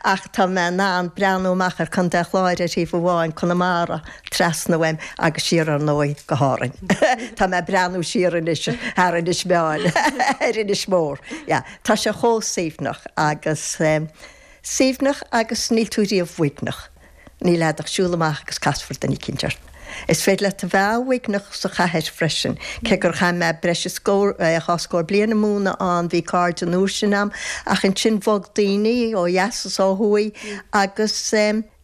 ach tá mé in ann breathnú amach ar Chontae an Chláir ar thaobh amháin, Conamara trasna uaim agus siar, ar ndóigh, go hÁrainn. Tá mé ag breathnú siar anois thar Inis Meáin, ar Inis Mór. Yeah. Tá sé chomh suaimhneach agus... suaimhneach agus níl tú riamh uaigneach. Níl le a't ach siúl amach agus casfar duine eicínt ort. Is féidir leat a bheith uaigneach sa chathair freisin, cé gur chaith mé breis is dhá scór bliain i mo chónaí ann, bhí cairde an uair sin a'm, ach ansin bhog daoine ó dheas is ó thuaidh agus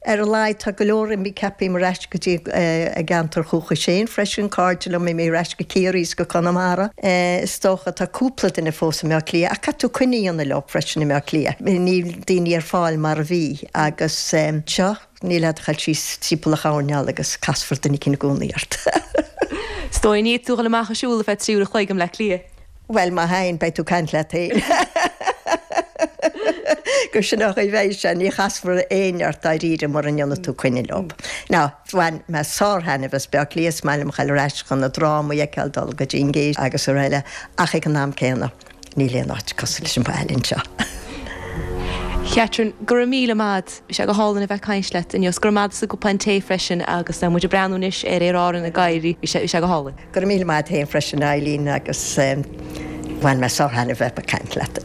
ar a laghad tá go leor imithe, ceapaím, ar ais go dtí a gceantar dúchais féin freisin, cairde liom a d'imigh ar ais go Ciarraí is go Conamara is dócha, tá cúpla duine fós i mBleá Cliath ach caithfidh tú coinne a dhéanamh leo freisin i mBleá Cliath, níl daoine ar fáil mar a bhí. Agus anseo, níl le a't ach a ghabháil síos timpeall, a ghabháil aníos agus casfar duine eicín i gcónaí ort. Is dóigh dá mbeadh tú ag dul amach ag siúl ar feadh trí uair an chloig i mBleá Cliath. Bhuel, má théann, beidh tú ag caint leat féin. Go, sin an chaoi a bheidh sé, ní chasfar éinne ort dáiríre mura ndéana tú coinne leo. Now, bhain mé sár-thaitneamh as Bleá Cliath, is maith liom a ghabháil ar ais chun na drámaí a fheiceáil, dul go dtí an Gate agus araile ach ag an am céanna, Níl aon áit cosúil leis an mbaile anseo. Catherine, Go raibh míle maith 'ad. Bhí sé go hálainn a bheith ag caint leat inniu 's go raibh maith a'd as an gcupán tae freisin agus muid ag breathnú anois ar Aer Árann ag éirí, bhí sé, bhí sé go hálainn. Go raibh míle maith 'ad fhéin freisin a Eileen agus bhain mé sár-thaitneamh a bheith ag caint leat.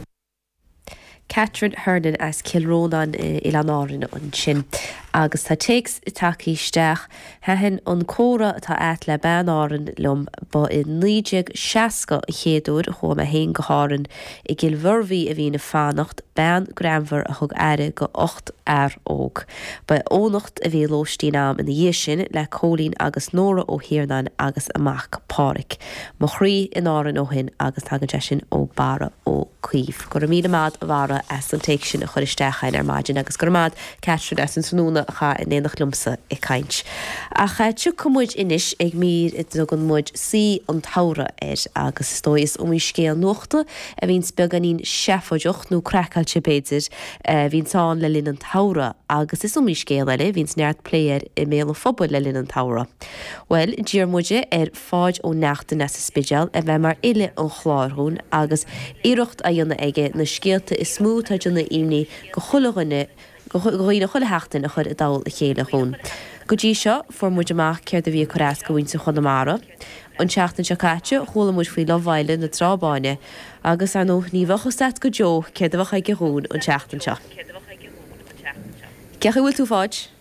Catherine Hernon as Cill Rónáin, Oileán Árainn ansin agus tá téacs tagthaí isteach, 'Thaitin an comhrá atá a't le bean Árann liom, ba i 1960 an chéad uair a chuaigh mé féin go hÁrainn, i gCill Mhuirbhí a bhínn ag fanacht, bean greannmhar a thug aire do ochtar fear óg. Ba in Eoghanacht a bhí a lóistín a'm ina dhiaidh sin le Cóilín agus Nóra Ó hIarnáin agus a mac Páraic. Mo chroí in Árainn ó shin agus tagann sé sin ó Barra Ó. Cuív. Go raibh míle maith a'd a Bharra as an téacs sin a chur isteach chugainn ar maidin agus go raibh maith a'd Catherine as an tráthnóna a chaitheamh in éineacht liomsa ag caint. Ach tiocfaidh muid anois ag mír a dtugann muid 'Saoi an tSamhraidh' air agus is dóigh is iomaí scéal nuachta a bhíonns beagáinín seafóideach, nó craiceáilte b'fhéidir, a bhíonns ann le linn an tsamhraidh agus is iomaí scéal eile a bhíonns neart plé air i mbéal an phobail le linn an tsamhraidh. Bhuel, d'iarr muid ar. Pháid Ó Neachtain as an Spidéal a bheith mar fhile an chláir dhúinn agus iarracht a dhéanamh aige na scéalta is mó atá ag déanamh imní do chuile dhuine do dhaoine chuile sheachtain a chur i dtoll a chéile dhúinn. Go dtí seo, fuair muid amach céard a bhí ag cur as do mhuintir Chonamara. An tseachtain seo caite, chuala muid faoi love-fhéile na Trá Báine agus, ar ndóigh, ní bheadh fhios a't go deo céard a bheadh aige dhúinn an tseachtain seo. Cén chaoi a bhfuil tú, a Pháid?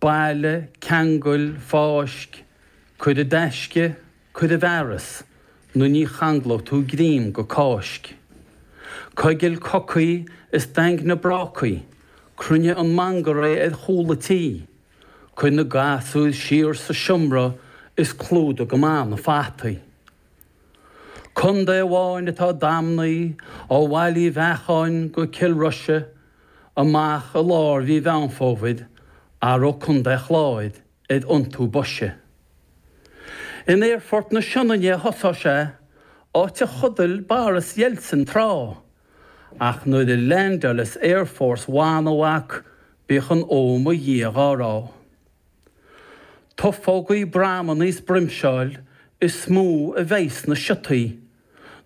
bailigh, ceangail, fáisc, cuir i dtaisce, cuir i bhfearas, nó ní changlóidh tú greim go Cáisc. coigil cocaí is daingnigh brácaí, cruinnigh an mangarae ar chúl an tí, cuir na gasúir siar sa seomra is clúdaigh go maith na fataí. Contae amháin atá damnaithe, ó Bhaile Uí Bheacháin go Cill Rois amach i lár mhí Mheán Fómhair athróidh Contae an Chláir ar iontú boise. In Aerfort na Sionainne a thosóidh sé, áit a chodail Boris Yeltsin tráth, ach nuair a leaindeálfas Air Force One a mhac bíodh an 'Ó mo Dhia' dhá rá. Tufógaí, bramannaí is broimseáil is mó a bheas sna siotaí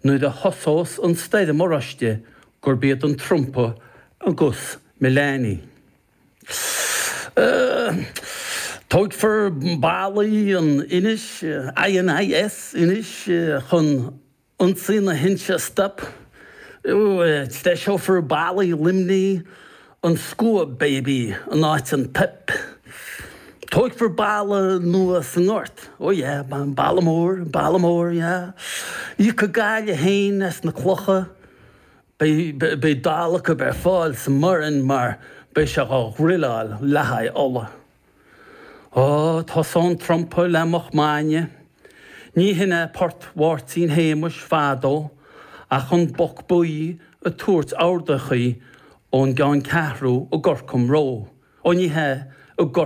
nuair a thosós an stoirm oráiste gurb iad an Trumpa agus Melania tóigfear ballaí in Inis INIS Inis chun ionsaí na hInse a stop is treiseofar ballaí Luimnigh an scuab baby in áit an pip. Tóigfear balla nua sa nGort, oh yeah, balla mór, balla mór, yeah. Íocfaidh Gaillimh féin as na clocha, beidh dalladh acu ar fáil sa mBoirinn mar beidh sé dhá dhruileáil le haghaidh ola. Ó, tá son trumpa le moch maidne. Ní hin é Port Mháirtín Shéamuis fadó ach an boc buí ag tabhairt ordachaí ón gceanncheathrú i gCorcomroe, ó ní hea, i.